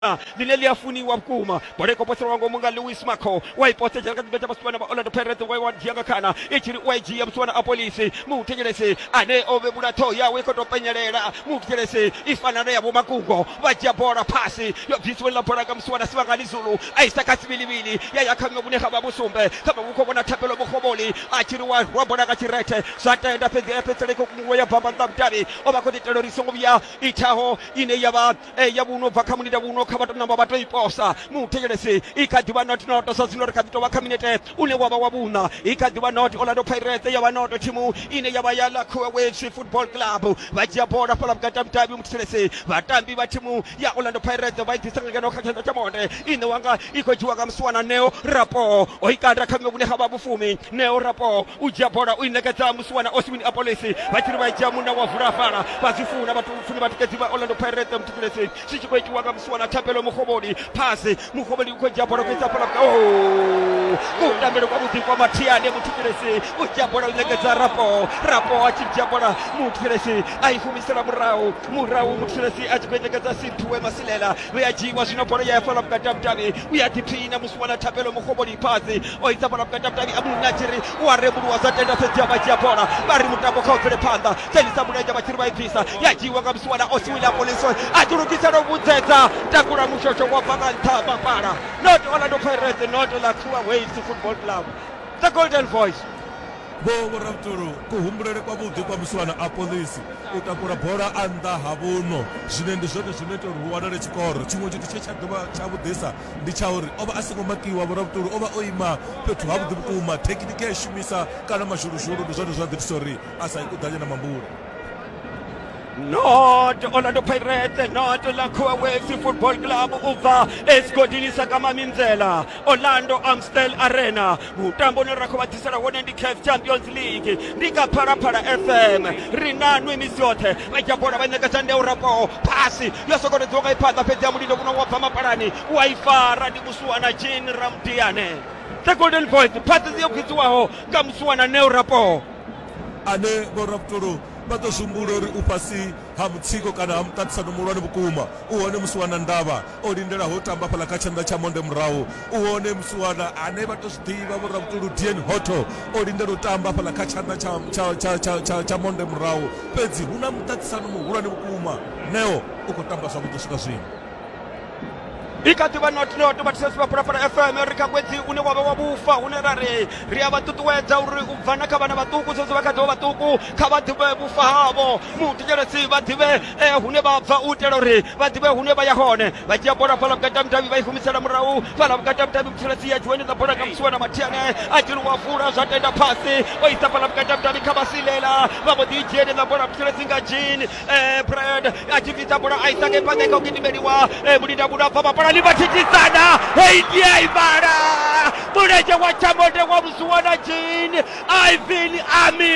line ḽi a funiwa vhukuma bola i khou poselwa ngomu nga lewis maco wa i posedzela kha tshipiḓa tsha vhasiwana vha orlando pirates wa wa dzhia nga khana i tshi ri u a i dzhia vhasiwana a polisi muthetshelesi ane o vhevhula ṱhoho yawe i khou tou penyelela muthetshelesi i fana na ya vhomakungo vha dzhia bola phasi yo bvisiwe ḽa bola nga musiwana sivhangani zulu a isa kha sivhilivhili ya ya kha ṅwe vhune ha vha vhusumbe kha vha vhukho vhona thapelo mukhovholi a tshi ri wa rwa bola nga tshirethe zwa tenda fhedzi ya fhedzisela i khou kunguwe ya bamba nnḓa mudavhi o vha khou ḓi itela uri i songo vhuya ithaho ine ya vha e ya vhuno bva kha mulinde vhuno kha vha to namba vha to i posa muthetshelesi i kha ḓivha not noto sa zwino ri kha ḓi tovha kha minete une wavha wa vhuṋa i kha ḓivha not orlando pirates ya vha noto thimu ine ya vha ya lakhuwa waves football club vha dzhia bola fhala vhukati ha mudavhi muthetshelesi vhatambi vha thimu ya orlando pirates vha i ḓisa nga ngeno kha tshanḓa tsha monde ine wanga i khou dzhiwa nga musiwana neo rapo o i kanda kha vhuṅwe vhune ha vha vhufumi neo rapo u dzhia bola u i ṋekedza musiwana oswin apolisi vha tshiri vha dzhia munna wa vula fhala vha zwi funa vhathu funi vhatikedzi vha orlando pirate muthukulesi zwi tshi khou itiwa nga musiwana thapelo muhovholi phasi muhovholi u khou dzhia bola kuisa fhala kutambelo kwa vhuḓi kwa mathiane muthukulesi u dzhia bola u ṋekedza rapo rapo a tshi dzhia bola muthukulesi a i humisela murahu murahu muthukulesi a tshi khou i ṋekedza sinthuwe masilela vhe a dzhiiwa zwino bola ya ya fhala vhukati ha vhudavhi u ya ḓiphina musiwana thapelo muhovholi phasi o ita bola vhukati ha vhudavhi abdul natshiri u a rembuluwa zwa tenda fhedzi a vha dzhia bola vha ri mutambo kha u bvele phanḓa dzhenisa mulenzhe vha tshiri vha i bvisa ya dzhiiwa nga musiwana o siwila polison a ḓi lugisela u vhudzedza takula mushosho wa bva nga nṱha mapala not orlando pirates not laxua waves football club the golden voice vho vhoravhutolo kuhumbulele kwavhuḓi kwa musiwana a polisi u takula bola a nnḓa ha vhuno zwine ndi zwone zwino ita uri hu wanale tshikoro tshiṅwe tshithu tshe tsha dovha tsha vhuḓisa ndi tsha uri o vha a songo makiwa. Vhoravhuṱoli o vha o ima fhethu havhuḓi vhukuma. Thekhinikhe a i shumisa kana mazhuluzhulu ndi zwone zwa ḓo itisa uri a sa ikuḓanye na mambule. not orlando pirates not lakhuwa west football club u bva esigodini sa kamaminzela orlando amstel arena mutambo une ra khou vha ḓisela wone ndi caf champions league ndi nga phalaphala fm ri na nwi misi yoṱhe vha dzhia bola vha ṋekedza ndeu rapoho phasi yo sokotedziwa nga iphaḓa fhedzi ya mulindo kuno wa bva mapalani wa i fara ndi musuwana jean ramdiane the golden voice phasi yo khwidziwaho nga musuwana neu rapoho ane vhorabutolo vha ḓo zwi humbula uri u fhasi ha mutsiko kana ha muṱaṱisano muhulwane vhukuma u hone musi wana ndavha O lindela ho tamba fhaḽa kha tshanḓa tsha monde murahu. U hone musiwana ane vha tou zwi ḓivha vho Ravhutulu Dean Hotto o lindela u tamba fhaḽa kha tshanḓa tsha, tsha, tsha, tsha, tsha, tsha monde murahu. Fhedzi hu na muṱaṱisano muhulwane vhukuma. Neo u khou tamba zwavhuḓi u swika zwino. i kha ḓivha not not vhathusesi vha phalaphala fm ri kha ṅwedzi une wa vha wa vhufa hune ra ri ri a vha ṱuṱuwedza uri u bva na kha vhana vhaṱuku saizwi vha kha ḓivha vhaṱuku kha vha ḓivhe vhufa havho muthetshelesi vha ḓivhe eh, hune vha bva u itela uri vha ḓivhe hune vha ya hone vha dzhia bola fhala vhukati ha mudavhi vha i humisela murahu fhala vhukati ha mudavhi muthelesi ya dzhiweni dza bola kamsiwa na mathiane a dzhiluwa fula zwa tenda fhasi o isa fhala vhukati ha mudavhi kha vhasilela vha mbo ḓi i dzhiele dza bola muthelesi nga jean eh, brad a tshi bvisa bola a isa nge phanḓa kha u gidimeliwa eh, mulinda muno a bva mapalani vha thithisana hei ndi a ivhala mulenzhe wa tshamonde wa vhusiwana jean ivin ami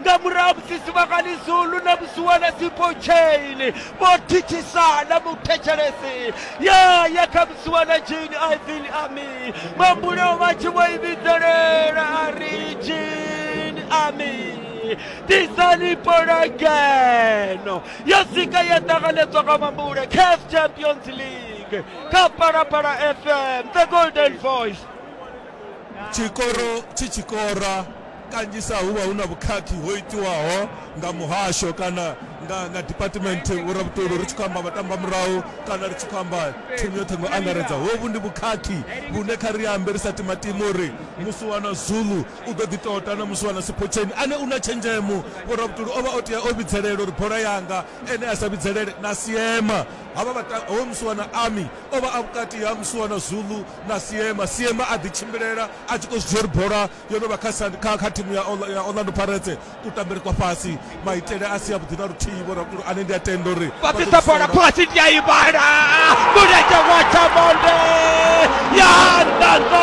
nga murahu ha musi sivhangani zulu na vhusiwana sipo chain vho thithisana muthetshelesi ya ya kha vhusiwana jini ivin ami mambuleo vha tshi vho i vhidzelela a ri jini ami tisani bola ngeno yo sika ya ṱanganedzwa nga mambule caf champions league kha palapala fm the golden voice tshikoro tshi tshikora Kanzhisa hu vha hu na vhukhakhi ho itiwaho nga muhasho kana nga nga department vho Rabutolo ri tshi khou amba vhatambamurahu kana ri tshi khou amba thimu yoṱhe ngo angaredza. Hovhu ndi vhukhakhi vhune kha ri ambe ri sa timatimi uri musiwana Zulu u ḓo ḓi tota na musiwana Siphotheni ane u na tshenzhemo. Vho Rabutolo o vha o tea o vhidzelela uri bola yanga ene a sa vhidzelele na Siema. Havha vhata, hoyu musiwana Ami o vha a vhukati ha musiwana Zulu na Siema. Siema a ḓitshimbilela a tshi khou zwi dzhia uri bola yo no vha kha kha kha thimu ya Orlando Pirates kutambele kwa fhasi maitele a si avhuḓi na luthihi vho rakulu ane ndi a tenda uri vha ḓisa bola khasi ndi a ivhala mulenzhe wa tshamonde ya ndanḓo